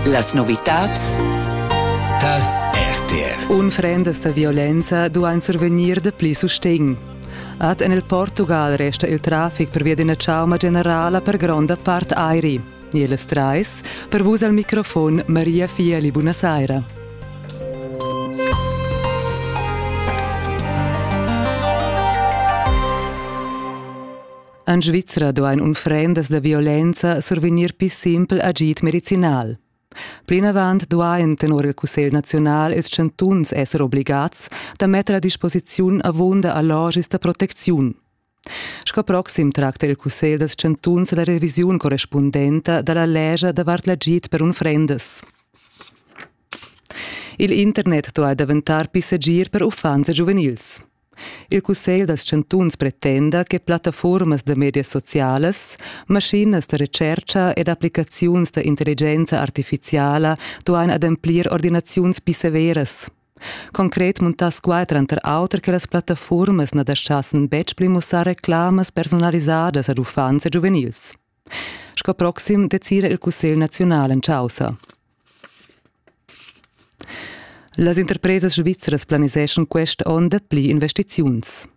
Las novitads tar RTR. Unfrendas da violenza duain survegnir dapli sustegn. Ad en il Portugal resta il traffic pervia d'ina chauma generala per gronda part airi. Ils trais, per vus al microfon Maria Fieli, buonasera. En Svizra duain unfrendas da violenza survegnir pli simpel agid medicinal. Plinavant duain tenor il Cussegl naziunal ils chantuns esser obligads da metter a disposiziun avunda allogis da protecziun. Sco proxim tracta il Cussegl dals chantuns la revisiun correspundenta da la legia davart l'agid per unfrendas. Il internet duai daventar pli segir per uffants e giuvenils. Il cussegl dals chantuns pretenda che plattafuormas da medias socialas, maschinas da retschercha ed applicaziuns da intelligenza artificiala duain ademplir ordinaziuns pli severas. Concret muntass quai tranter auter che las plattafuormas na daschassen betg pli mussar reclamas personalisadas ad uffants e giuvenils. Sco proxim decida il Cussegl naziunal en chaussa. Las interpresas svizras planiseschan quest onn dapli investiziuns.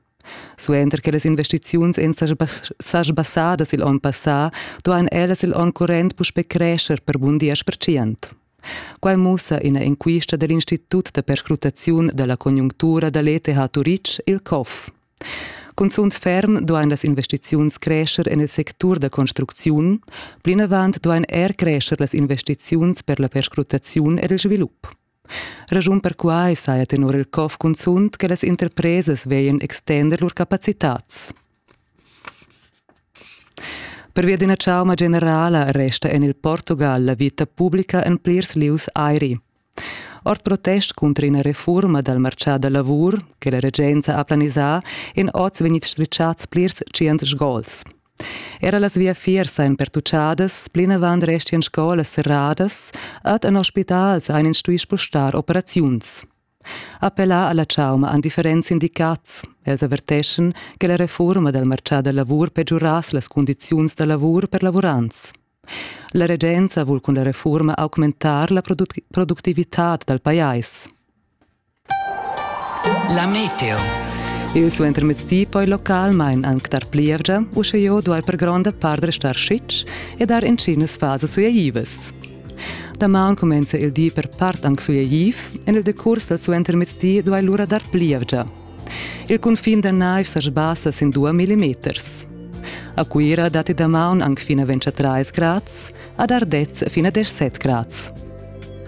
Suenter che las investiziuns èn sa sbassadas il onn passà, duain ellas il onn current puspè crescher per bun diesch percent. Quai mussa ina enquista da l'Institut da perscrutaziun da la conjunctura da l'ETH Turitg, il COF. Cunzunt ferm duain las investiziuns crescher en il sectur da construcziun, plinavant duain er crescher las investiziuns per la perscrutaziun ed il svilup. Raschun per quai saja tenor il COF cunzunt che las interpresas veglian extender lur capacitads. Pervia d'ina chauma generala resta en il Portugal la vita publica en plirs lieus airi. Ord protest cunter ina refurma dal martgà da lavur che la regenza ha planisà èn oz vegnids strischads plirs tschient sgols. Era las viafiers ein pertucciadas, plinavant restian scolas serradas, ed en ospitals ein ins stuì spostar operaziuns. Appellà alla chauma han differents sindicats. Els averteschan che la reforma del marcià da lavur pegiurass las condiziuns da lavur per lavurants. La regenza vul cun la reforma augmentar la produc productivitad dal pajais. La meteo. Il suo intermezzi poi localmain anc dar plievgia, usche jo duai per gronda part restar schitsch e dar in cinas fases suaivas. Damaun cumenza il di per part anc sueigiv, en il decurs dal suentermezdi duai lura dar plievgia. Il cunfin da naiv sa sbassa sin 2 millimeters. A Cuira datti damaun anc fin a 23 grads, ad Ardez fin a 17 grads.